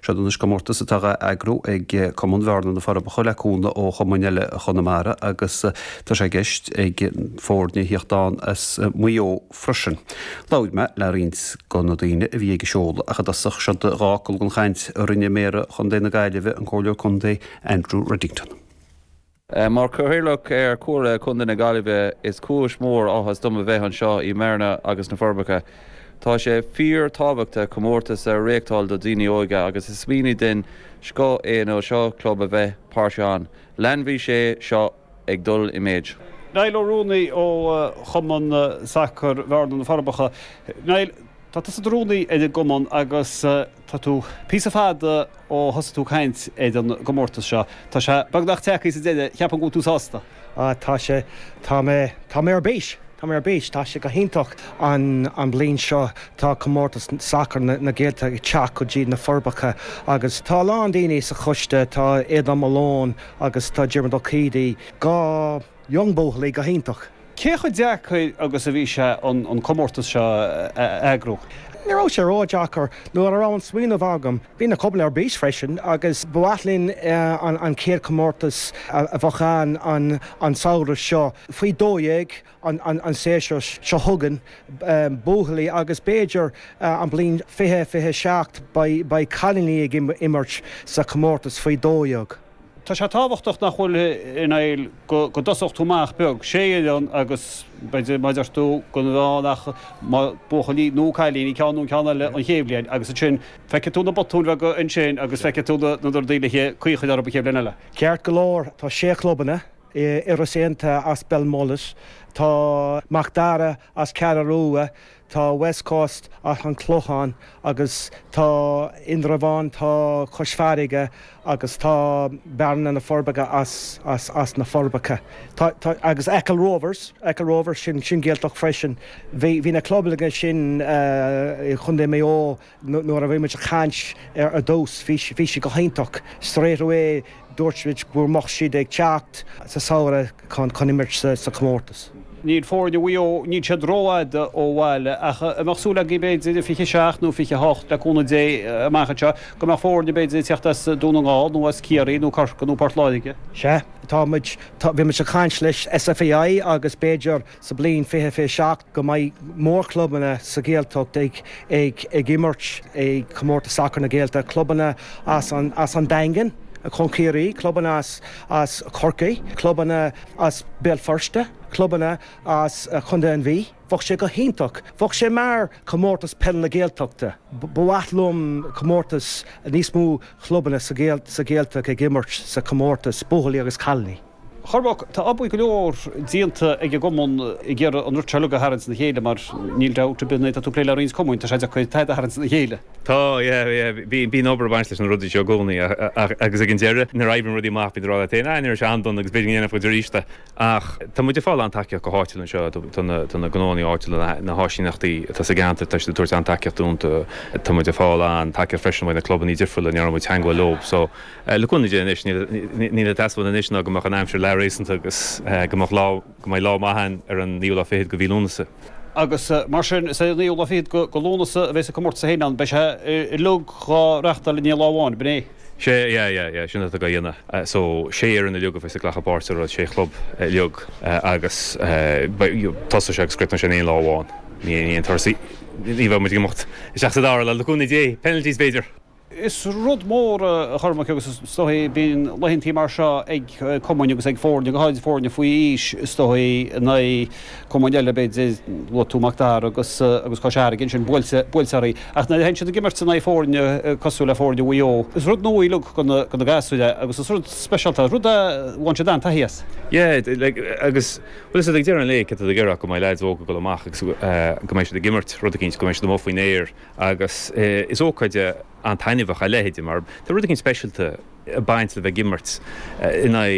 Seod é anois comórtas atá dhá eagrú ag Cumann Bhearna-Na Forbacha le cúnamh ó chumainn eile Chonamara agus tá sé i gceist ag foirne thíocht ann as Maigh Eo freisin. Labhair mé le roinnt go na daoine a bhí ag an seoladh ach i dtosach seod cuid den chaint a rinne Méara Chontae na Gaillimhe, an Comhairleoir Contae Andrew Reddington. Mar Chathaoirleach ar Chomhairle Contae na Gaillimhe, is cúis mhór áthais dom a bheith anseo i mBearna agus sna Forbacha. Tá sé fíor tábhachtach comórtais a réachtáil do dhaoine óga agus is smaoineamh den scoth é na sé club a bheith páirteach ann. Leanfaidh sé seo ag dul i méid. Niall Ó Ruanaidh ó Chumann Sacar Bhearna-Na Forbacha. Tá tusa i do rúnaí ar an gcumann agus tá tú píosa fada ó thosaigh tú caint ar an gcomórtas seo. Tá sé beagnach tagtha sa deireadh, ceapaim go bhfuil tú sásta? Á, tá sé, tá mé, tá mé ar bís, tá mé ar bís, tá sé go hiontach. An bhliain seo tá comórtas sacair na Gaeltachta ag teacht go dtí na Forbacha agus tá a lán daoine sa choiste, tá Aodhán Malone agus tá Diarmuid Ó Céidigh, dhá, Young Buachaillí go hiontach. Cé chomh deacair agus a bhí sé an comórtas seo a eagrú? Ní raibh sé ró-deacair. Nuair a raibh an smaoineamh agam, bhí na clubanna ar bís freisin agus ba mhaith linn an chéad chomórtas a bheadh ann an samhradh seo. Faoi dó dhéag an séasúr seo chugainn buachaillí agus b'fhéidir an bhliain fiche, fiche a seacht beidh cailíní ag imirt sa chomórtas faoi dó dhéag. Tá sé tábhachtach nach bhfuil, Niall, go dtosódh tú amach beag, Sea, agus b'fhéidir mar a deir tú go ndéanann muid buachaillí nó cailíní, ceann nó ceann eile an chéad bhliain agus ansin feicfidh tú na botúin bheaga ansin agus feicfidh tú na rudaí le caoi a chur orthu roimh an chéad bhliain eile. Ceart go leor, tá sé chlubanna, Iorras Aontaithe as Belmullet, tá Mac Dara as Ceathrú Rua, Tá West Coast, as an Clochán agus tá Indreabhán, tá Cois Farraige agus tá Bearna na Forbacha as na Forbacha. Tá, tá, agus Achill Rovers, Achill Rovers, sin, sin Gaeltacht freisin. Bhí, bhí na clubanna sin i Chontae Maigh Eo. Nuair a bhí muid ag caint ar dtús, bhí sé go hiontach. Straight away, dúirt muid go mbeadh siad ag teacht sa samhradh chun imirt sa chomórtas. Níl foirne Mhaigh Eo, níl siad rófhada ó bhaile, ach an mbeadh súil agaibh, b'fhéidir, 27 nó 28, le cúnamh Dé, amach anseo, go mbeadh foirne, b'fhéidir, ag teacht as Dún na nGall, nó as Ciarraí, nó Corcaigh, nó Port Láirge. Sea, tá muid, bhí muid ag caint leis an SFAI agus b'fhéidir sa bhliain 2027 go mbeidh mórchlubanna sa Ghaeltacht ag imirt i gcomórtas sacair na Gaeilge, clubanna as an Daingean chun Ciarraí, clubanna as Corcaigh, clubanna as Béal Feirste, clubanna as Chontae an Mhí. Bheadh sé go hiontach. Bheadh sé mar chomórtas peil na Gaeltachta. Ba mhaith liom comórtas níos mó clubanna sa Ghaeltacht ag imirt sa chomórtas, buachaillí agus cailiní. Chormaic, tá obair go leor déanta ag an gCumann ag iarraidh an rud uilig a tharraingt na chéile mar níl dabht ar bith nuair atá tú ag plé le roinnt cumainn, tá sé deacair tada a tharraingt na chéile. Tá, yeah, yeah, bíonn obair ag baint leis na rudaí seo i gcónaí ach, agus ag an deireadh nuair a oibríonn rudaí amach bíonn tú ag rá leat féin, ah, ní raibh sé an-dona agus b'fhéidir go ndéanfadh muid arís é. Ach tá muid ag fáil an-tacaíocht go háitiúil anseo, tá na, tá na gnóannaí áitiúla, na háisíneachtaí atá sa gceantar, tá siad ag tabhairt an-tacaíocht dúinn, tá muid ag fáil an-tacaíocht freisin ó na clubannaí difriúla a ndearna muid teagmháil leo, so. le cúnamh Dé anois, níl ag teastáil anois ná go mbeadh an aimsir leath-réasúnta agus go mbeadh lá, go mbeidh lá maith ann ar an naoú lá fichead de mhí Lúnasa. Agus mar sin, is é an naoú lá fichead de Lúnasa a bheas an comórtas féin ann. Beidh sé uilig dhá reachtáil in aon lá amháin, b'in é? Sea, yeah, yeah, yeah, sin atá dhá dhéanamh. So, sé fhoireann uilig a bheas ag glacadh páirt sa rud, sé chlub uilig agus beidh, you know, tosóidh sé agus críochnóidh sé in aon lá amháin. In aon turas í. Ní bheidh muid ag imeacht isteach sa dara lá, le cúnamh Dé. Penalties, b'fhéidir! Is rud mór a Chormaic agus is dóigh bíonn laethantaí mar seo ag cumainn agus ag foirne, go háirid foirne faoi aois is dóigh, in aghaidh cumainn eile b'fhéidir, luaigh tú Mac Dara agus agus Cois Fharraige ansin, buailte buailte orthu. Ach nuair a théann siad ag imirt in aghaidh foirne cosúil le foirne Mhaigh Eo, is rud nua uilig do na do na gasúir é agus is rud speisialta, rud a bhain siad an-taithí as. Yeah, like agus bhuel is é ag deireadh an lae céard atá tú ag iarraidh ach go mbeidh leaids óga dul amach agus go mbeidh siad ag imirt rud eicínt, go mbeidh siad amuigh faoin aer. Agus is ócáid an-taitneamhach a leithéid mar tá rud éigin speisialta ag baint le bheith ag imirt in aghaidh